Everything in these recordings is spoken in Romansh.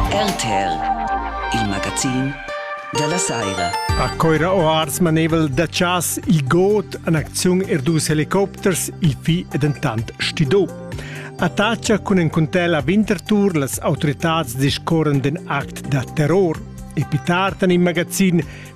RTL, il magazin della Saira. A Coira Oars manevel da chas il got an acziun er dus helicopters, il fi e dentant stido. Attacha cun en contella Winterthur las autoritats discorren den act da terror. E pitartan in magazin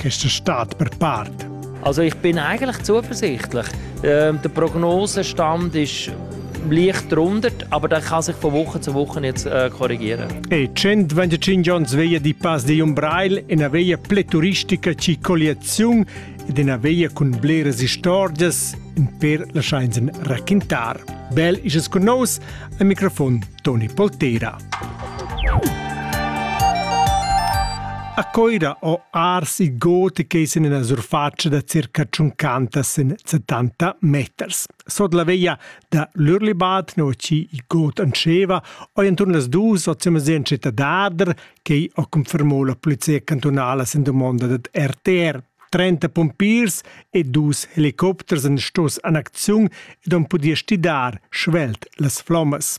questa stad per part. Also ich bin eigentlich zuversichtlich. Ähm, der Prognosenstand ist leicht drunter, aber der kann sich von Woche zu Woche jetzt äh, korrigieren. E 125 Jahre veglia di Pas di Umbrail è una veglia pleturistica circolazione ed è una veglia con bleras stories in per lasciarsi raccontare. Bel ist es con nos, al microfon Toni Poltera. A Coira ho arsi gotica in ina surfatscha da circa tschuncantas sin 70 meters. Sot la veglia da l'Urlibad, no chi i got anscheva, ho intorn las dus ozimazientsche da Dader, che ho confermò la polizia cantunala sin domanda dad RTR. 30 pompiers e dus helicopters han stos an acziun ed han pudì stidar svelt las flommas.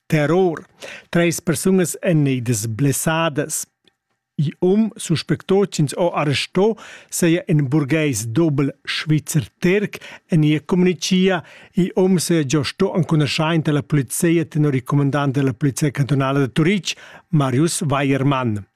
Terror. Treis persunas enneidas blessadas. Il um suspecto ch'ins ho arresto seia in burgheis dobel svizzer Terc en ia communicia. Il um seia già sto enconuschaint dalla polizia tenor il comandant della polizia cantonala da Turitg, Marius Weiermann.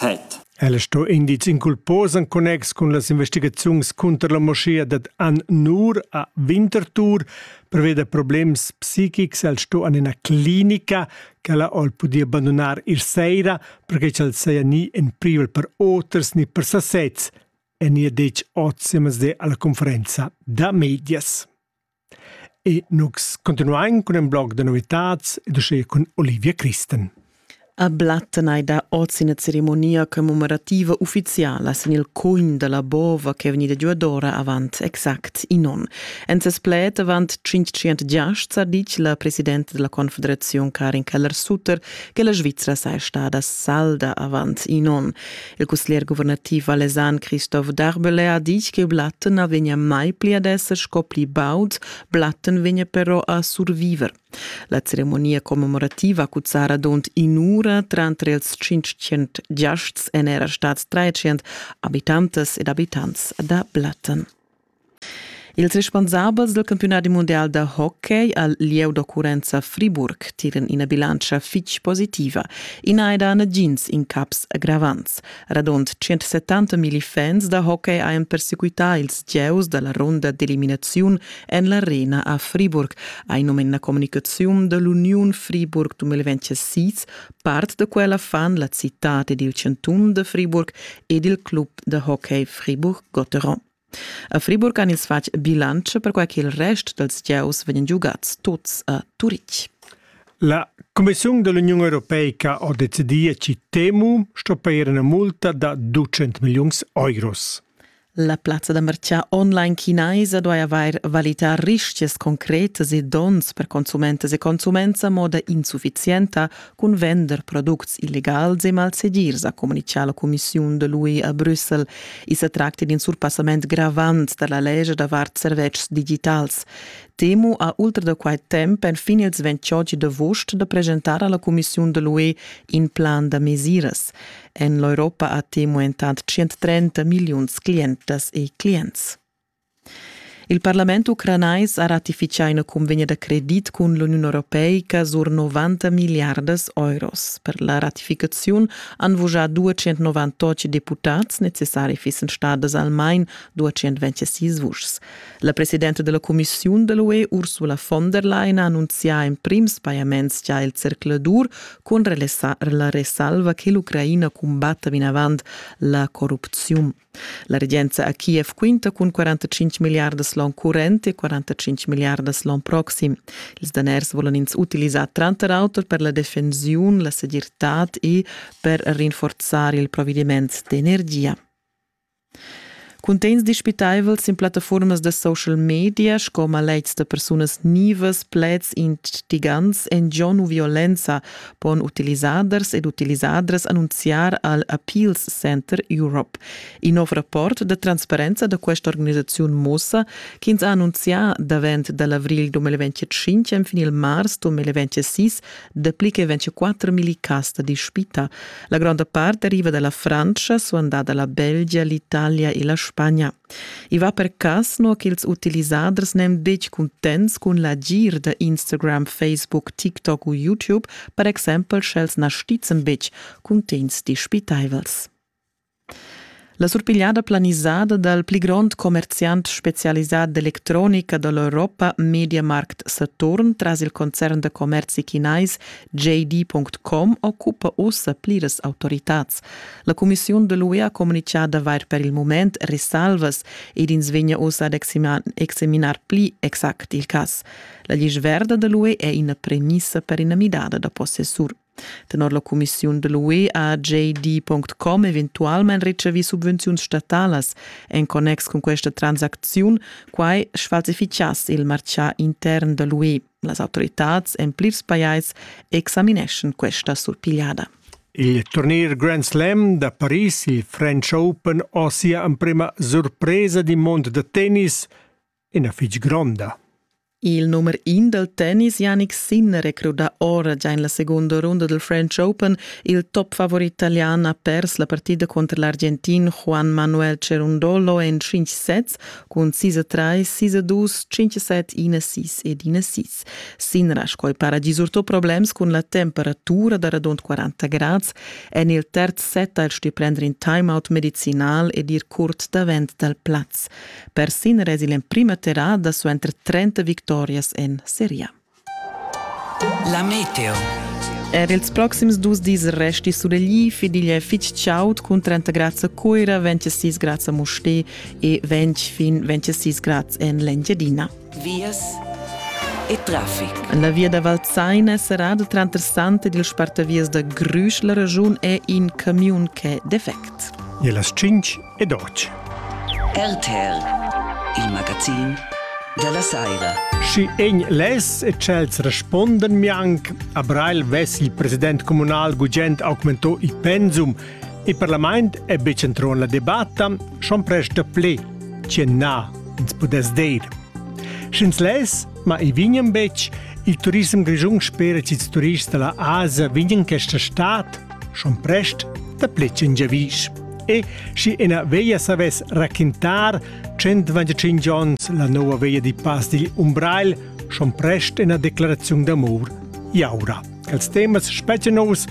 het. Ella sto indiz inculpos en connex cun las investigaziuns cunter la moschea dad An Nur a Winterthur preveda problems psichics, el sto an ina clinica che ella ol podia abandonar ir seira perché ch'el seia ni en privel per oters ni per sasez, e ni detg otsimas de alla conferenza da medias. E nus continuain cun ün blog da novitats ed uschè cun Olivia Christen. A Blatten hai dà oz ina ceremonia commemorativa uffiziala sin il cugn da la bova ch'è vegnida giuadora avant exact in onn. En ses pled avant 500 giasts ha ditg la presidenta della Confederazione Karin Keller-Sutter che la Svizzera sei stada salda avant in onn. Il cusglier guvernativ valesan Christoph Darbele ha ditg che Blatten na vegnia mai pli ad esser sco pli baud, Blatten vegnia però a surviver. La ceremonia commemorativa cuzzara dont in'ura tranter ils 500 giasts en era stads 300 abitantas ed abitants da Blatten. Ils responsabels dal campiunadi mundial da hockey al lieu d'occurrenza Friburg tiran ina bilantscha fitg positiva. I n'ha dà nagins incaps aggravants. Radund 170 milli fans da hockey hajan persequità ils gieus da la runda d'eliminaziun en l'arena a Friburg, hai num en la communicaziun da l'Uniun Friburg 2026. Part da quella fan la citad ed il chantun da Friburg ed il club da hockey Friburg-Gotteron. A Friburg han ins fatg bilantscha perquai ch'il rest dals gieus vegnan giugads tuts a Turitg. La Commissiun da l'Uniun europeica ha decidì a Citemu stopper ina multa da 200 milliuns euros. La plazza da merchat online chinaisa duai avair valità rischias concretas e donns per consumentas e consuments a moda insuffizienta, cun vender products illegals e malsegirs, ha communichà la cumissiun da l'UE a Brüssel. I sa tracta d'un surpassament gravant da la legge davart servetschs digitals. Temu ha ultra da quai temp enfin ils 28 d'avust da presentar a la cumissiun da l'UE in plan da mesiras. En l'Europa ha Temu entant 130 milliuns clientas e clients. Il parlament ucranais ha ratifichà ina cunvegna da credit cun l'Uniun europeica sur 90 miliardas euros. Per la ratificaziun han vuschà 298 deputads, necessari fissen stadas almain 226 vuschs. La presidenta della Commissiun dell UE Ursula von der Leyen ha annunzià in prims pajaments già il zercladur con la resalva che l'Ucraina cumbatta vinavant la corrupziun. La regenza a Kiev quinta cun 45 milliardas l'on current e 45 milliardas l'on proxim. Ils daners volan ins utilisar tranter auter per la defensiun, la segirtad e per rinforzar il provvediment d'energia. Cuntegns dispitaivels in plattaformas da social media sco maletgs da persunas nivas, pleds instigants en gion u violenza pon utilisaders ed utilisadras annunziar al Appeals Center Europe. In nov rapport da transparenza da questa organisaziun mussa ch'ins ha annunzià davent da l'avrigl 2025 enfin il mars 2026 dapli che 24 000 cas da dispita. La gronda part deriva da la Frantscha, suandada la Belgia, l'Italia e la Spagna. I va per cass no ch'ils utilisaders n'èn betg cuntents cun l'agir da Instagram, Facebook, TikTok u YouTube, per exempel sch'els na stizzan betg cuntegns dispitaivels. La surpigliada planisada dal pli grond commerziant spezialisà d'electronica da l'Europa Mediamarkt Saturn tras il concern da commerzi chinais JD.com occupa ussa pliras autoritads. La cumissiun de l'UE ha communichà d'avair per il moment risalvas ed ins vegna uss ad examinar pli exact il cas. La list verda de l'UE è ina premissa per ina midada da possessur. Tenor la cumissiun de l'UE ha JD.com eventualment ricevì subvenziuns statalas en connex con questa transaction, quai sfalsificass il marcià intern de l'UE. Las autoritads en plirs pajais examineschan questa surpigliada. Il turnier Grand Slam da Paris, il French Open, ha sia emprima surpresa di mond da tennis, ina fitg gronda. Il nummer in dal tennis Yannick Sinner recruta ora già en la segunda runda del French Open. Il top favorit italian ha pers la partida contro l'argentin Juan Manuel Cerundolo en 5 sets cun sis e trais, sis e dus, cinc e set, ina sis ed ina sis. Sinra sco para disurto problems cun la temperatura da radund 40 grads en il terz set als di prender in timeout medicinal ed ir curt davent dal plaz. Per sin resi l'emprima terrada suenter 30 victorias en seria. La meteo. Er ils proxims dus dis resti sulegli fidil è fitg chaud cun 30 grads a Cuira, 26 grads a Musté e 20 fin 26 grads en l'Engiadina. Vias e traffic. La via da Valzein è serrada tranter Sant ed il spartavias da Grüsch. La ragiun è in camiun ch'è defect. E las 5 ed oggi. RTL, il magazin della saira. Schi egn les e tschels responden mianc, a Breil ves il president comunal gugent augmento il pensum. Il parlament è bec entro la debatta, schon presta ple, ce na ins pudess deir. Sch'ins les, ma i vignan bec, il turism grigiun spera che i turists della Asia vignan questa stat, schon prest da plec in giavisch. E schi ena veia savess raquintar 125 onns la nova veia di Pass digl Umbrail, schon prest ena declaraziun d'amor iaura, ch'als temas spetge nous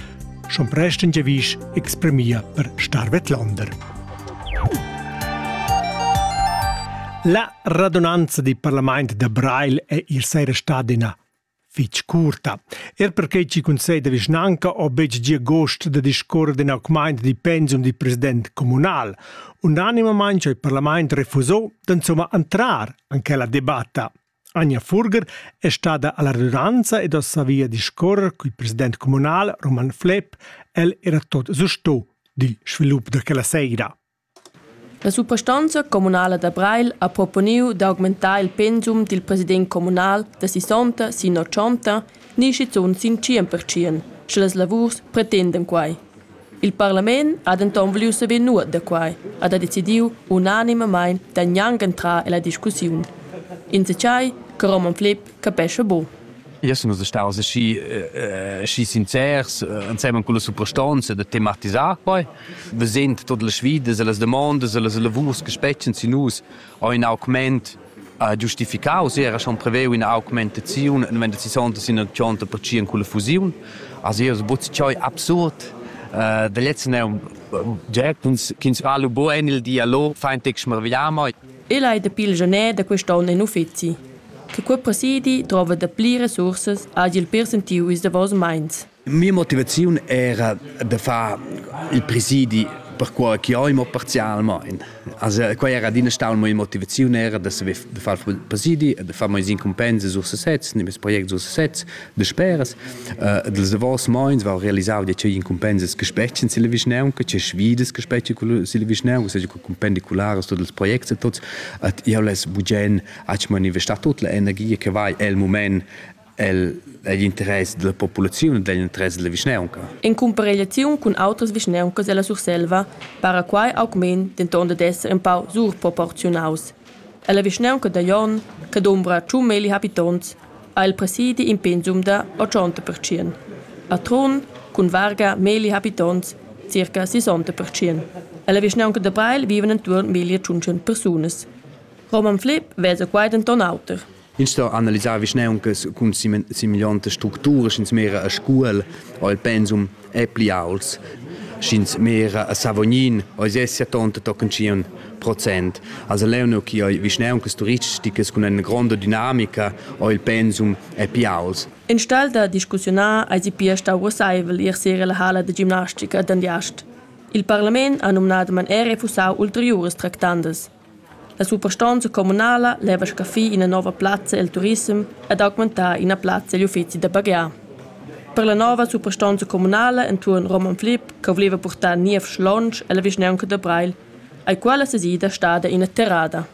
schon prest in giavisch exprimia per Starvet Lander. La radunanza di Parlament da Brail è ir seira stad ina fich curta. Er perquai chi conceda vischnanca ho betg gia gost da discorrer d'ün augmaint di pensum di president communal. Unanimamaing ho il parlament refusò d'insomma entrar an quella debatta. Anja Furger è stada alla redundanza ed ho savia discorrer col president communal Roman Flepp, el era tot susto di svilup da quella seira. La suprastonza communala da Breil ha proponiu d'augmentar il pensum dil president communal da sisonta sin otschonta ni schizun sin tschien pertschien, sche las lavurs pretendan quei. Il parlament ha denton vuliu saver nuot da quei ed ha decidiu unanimamein da gnanc entrar ella discussiun. Ins sa tgei che Roman Flepp capescha buc. Io sun staus aschi aschi sincers insemen con la suprastanza da tematisar quai vesend tot las sfidas e las demandas e las lavurs che spetschen sin nus ho in augment giustificaus era schon preveu ina augmentaziun wenn das sonta sin ein 30% con la fusiun also io so choi absurd da letzten er Gertens ch'ins fa lu bugen il dialog fein tec smarvigliamo e lai dapi il gener da quest onn in uffizi che quei presidi drova dapli resursas hagi il pir sentiu ils davos meins. Mia motivaziun era da far il presidi per quei che oi mo parzialmein. Also quei era adina stau mia motivaziun era da saver de far presidi e de far meis incompense sur sesez, ne mes project sur sesez, de speras. Uh, dels davos meins val realisar die cei incompenses gespechen sille vischnaun, che ce svides gespechen sille vischnaun, se co compendi culares tot els projects e tots, at io les bugen Ach manifestar tut la energia che vai el moment el egl interess della populaziun e egl interess della vischnaunca. In cumparegliaziun cun outras vischnauncas della Surselva para quai augment denton dad esser in pau surproporziunaus. Ella vischnaunca da Jon, che dombra tschun meli habitonts, ha il presidi in pensum da 80%. A Trun, cun varga meli habitonts, circa 60%. Ella vischnaunca da Breil vivan intuorn 1500 persunas. Roman Flipp vesa quai denton auter. Ins sto analisar vischnauncas cun similiontas structuras sch'ins mera a Scuol o il pensum è pli auts. Sch'ins mera a Savognin ois essia tonta tochen tschien procent. Also leuno chi oi vischnauncas turisticas cun ina gronda dinamica o il pensum è pli auts. In stel da discussiunar eisi pia stau russeivel ir sera la hala da gimnastica d'Andiast. Il parlament ha numnadamain er refusau ulteriuras tractandas. La suprastonza communala leva scaffir ina nova plazza el turissem ed augmentar ina plazza egl uffeci da baghiar. Per la nova suprastonza communala entuorn Roman Flip che voleva purtar niev schlonsch ella vischnaunca da Breil ei quella sesida stada ina terrada.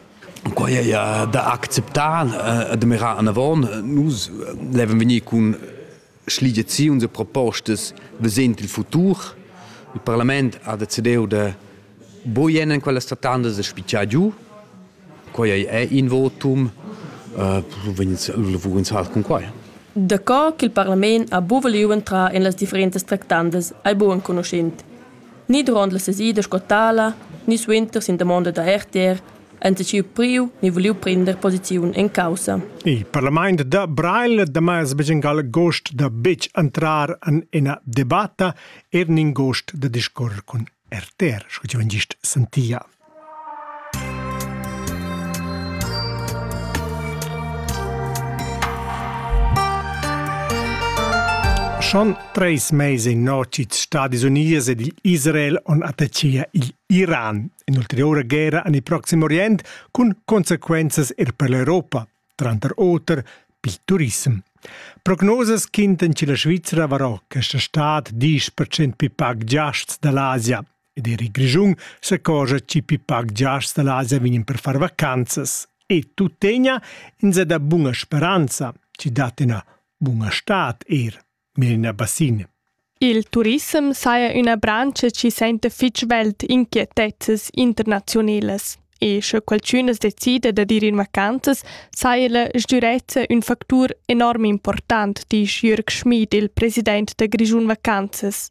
Quai è da acceptar, da mirar anavon. Nus levan vegnir cun schligiaziuns e propostas vesent il futur. Il parlament ha decidiu de boien en quella statanda de spicciar giu. Quei è in votum. Uh, vugins hal cun quai. Daco ch'il parlament ha bu voliu entrar en las differentas tractandas ei bu enconuschent. Ni duront la sesida sco tala, ni suenter sin damonda da RTR enta siu priu ni vuliu prender posiziun en caussa. Il parlament da Brail damas begengal gost da betg entrar en ina debatta er nin gost da discorrer cun RTR, sco ti vengist sentia. Schon treis meise notits Stadis Unies ed il Israel on attachia il Iran in'ulteriura guerra en il Proxim Orient cun consequenzas er per l'Europa, tranter oter pil turism. Prognosas quintan che la Svizzera varò questa stad 10% più pac giasts dall'Asia ed er il Grischun s'accorgia che più pac giasts dall'Asia vegnan per far vacanzas e tuttegna in se da bunga speranza, ci dat ina bunga stad er. Melina Bassin. Il turissem saja üna branscha chi sainta fich svelt inquietezzas internaziunelas e sche qualchün as decida da dir in vacanzas, saja la sdürezza ün factur enorm important, disch Jürg Schmid, il president da Grischun Vacanzas.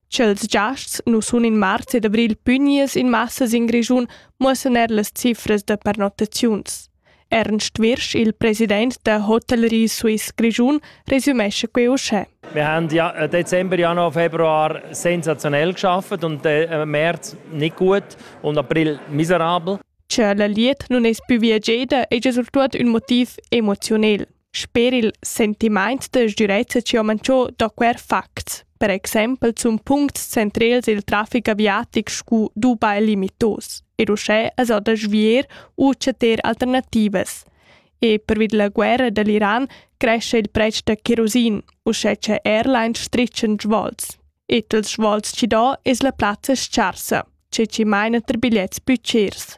Ch'els giasts nu sun in marz ed avril pügniers in massas in Grischun muossan eir las cifras da pernottaziuns. Ernst Wirsch, il president der Hotellerie Suisse Grischun, resümescha quei uschè. Wir haben ja äh, Dezember, Januar, Februar sensationell geschafft und äh, März nicht gut und April miserabel. Che la liet nun es più viageda eja surtuot ün motiv emoziunel. Sper il sentimaint da sgürezza chi ho manchô do quer facts, per exaimpel sun puncts centrels il trafic aviatic scu Dubai limitos ed uschè as ho da svier u chattar alternativas. E pervi da la guerra da l'Iran crescha il pretsch da cherosin, uschè cha airlines stritschan svols. E tals svols chi do es la plazza s-charsa, che chi maina ter bigliets pü chers.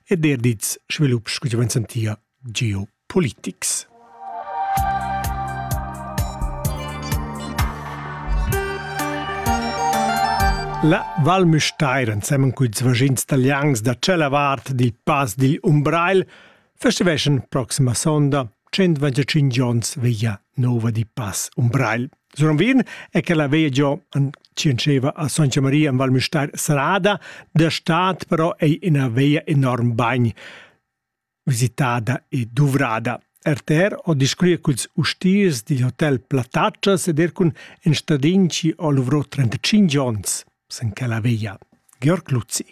ed er dits svilups che vegn sentia geopolitics. La Val Müstair, ensemen con ils vagins italians da tschella vart dil Pass digl Umbrail, festiveschan proxima sonda 125 ons veglia nova di Pass Umbrail. Suranvin è che la veia giò an Cianceva a Santa Maria in Val Mustar sarada, da stat però è ina veia enorm bagn visitada e duvrada. RTR o discurria culs ustiers digl hotel Plataccias ed er cun en stadinci o luvrò 35 ons. sen quella veglia. Georg Luzzi.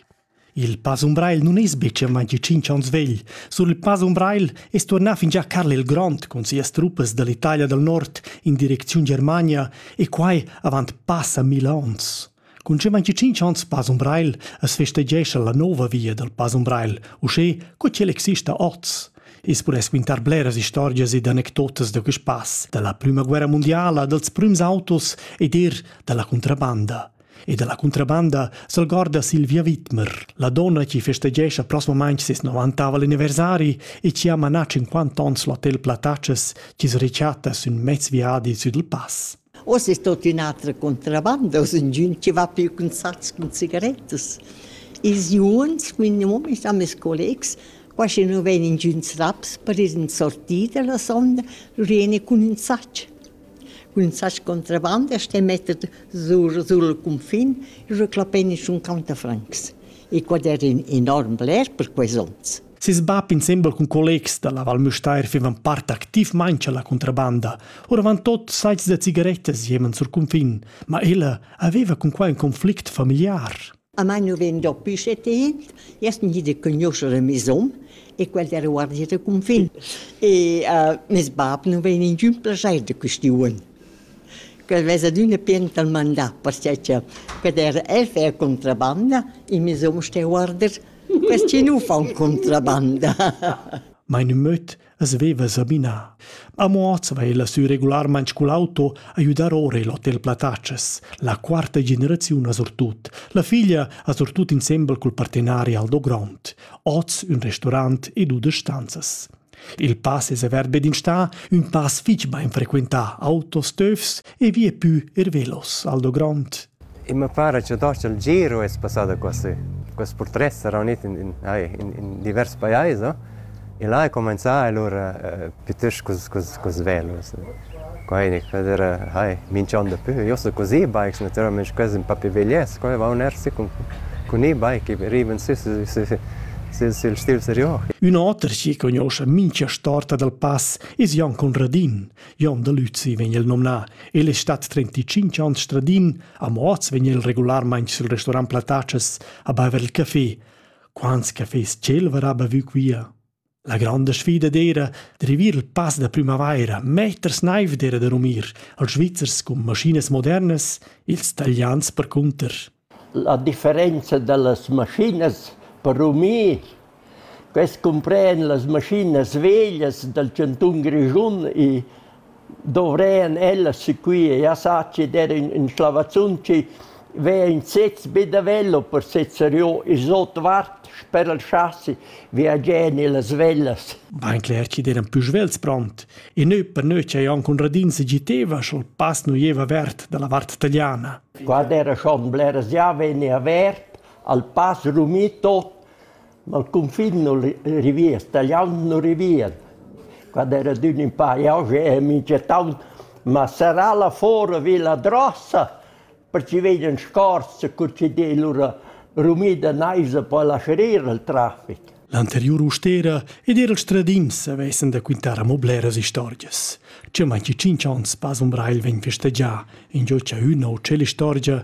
Il Pass Umbrail nun es be mai di cinc ans vegl. Sul Pass Umbrail es tuornà fingià Karl il Grond con sias truppas dall'Italia del Nord in direcziun Germania e quai avant passa mil ons. Cun ce manchi cinc ans Pass Umbrail es festeggescha la nova via del Pass Umbrail, uschè co ch'el exista oz. I's pudess quintar bleras istorgias ed anecdotas da quist pass da la prüma guerra mundiala, dals prüms autos ed eir da la cuntrabanda. E da la cuntrabanda s'algorda Silvia Wittmer, la donna chi festegescha prosmamaing ses 90 anniversari e chi ha manà 50 ons l'hotel Platatschas chi's rechatta sün mez viadi sü dal pass. Oz es tuot ün'atra contrabanda, oz ingün chi va più cun sats cun cigarettas. Ils juns, minimum, sta meis collegs, qua schi nu vegn ingüns raps per ir in sortida la sonda, lur jeni cun ün sach. Cun ün sach contrabanda ste metter sur sul cunfin, lur clappein in sun countafrancs. E quad er enorm bler per quels ons. Ses bab insembel cun collegs da la Val Müstair fivan part activmain cha la contrabanda. Oravantot saits da cigarettas jeman sur cunfin, ma ella aveva cun quai ün conflict familiar. A mai nu vegn dapü setit, jast gnit a cugnuoscher meis hom e quel era guardia da cunfin. E uh, mes bab nu vegn ingün plaschair da questiun. Quel vesa d'üna pien dal mandà, perché cha quel era el fer contrabanda e mes hom sté guarder Quest chi nu fa contrabanda. Meine möt as veva sabinà. A Moaz va ella sü regularmaing cul auto a güdar ora il Hotel Plataces. La quarta generaziun ha surtut. La figlia ha surtut insembel cul partenari Aldo Grond, hoz ün restaurant e dudesch stanzas. Il pass es avert be d'instà, ün pass fich bain frequentà, autos töfs e vie pü eir velos al do grond. E mi pare che tosto il giro è passato così. Questo portret sarà unito in, in, in, in diversi paesi e là è cominciato allora eh, piuttosto con, con, con velos. Quai ne quel era hai minch'on dapü. Eu sto cun e-bikes natüralmaing quels ün pa pi vegliets. Quai vaun eir sü cun cun e-bike e rivan sü sü sü sül sül stil serior. Ün oter chi cugnuoscha mincha storta dal pass es Jon Conradin. Jon da Lüzi vegn el nomnà. El es stat trenticinch ans stradin, amo hoz vegn el regularmaing sül restorant Platatschas a baiver il café. Quants cafés ch'el varà bavü quia? La granda sfida d'eira d'rivir il pass da prümavaira meters naiv d'eira da rumir als Svizzers cun maschinas modernas ils Talians percunter. La differenza da las maschinas per rumir quest cumpren las maschinas veglias dal chantun Grischun e dovrean ellas sequir e assatgi dad ün ün schlavazzun chi vea in sez be da velo per sezzar io ils otvart sper il chasi viagier nellas vellas. Bain cler chi d'eran pü svelts pront e nö per nö cha Jon Conradin se giteva sch'ol pass nu ieva avert dalla vart tagliana. Guarda era schon bleras già veni avert, al pass rumì tot, Ma il cunfin nun rivien, stagliaun nun rivien. Quand era adün ün pa jauche e minchettaun, ma serrà là fora vi la drossa, perche vegnan scorse cur chi d'ei lura rumida naisa po lascerir il trafic. L'anteriur ustera ed eir ils tradims avessan da quintar amo bleras istorgias. Cha mai chi tschinch ons pas umbrail vegn festegià, ingio cha üna o tschella istorgia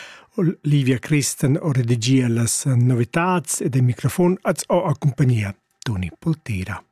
Livia Christen ho redigia las novitats ed il microfon als ho accumpagnia Toni Poltera.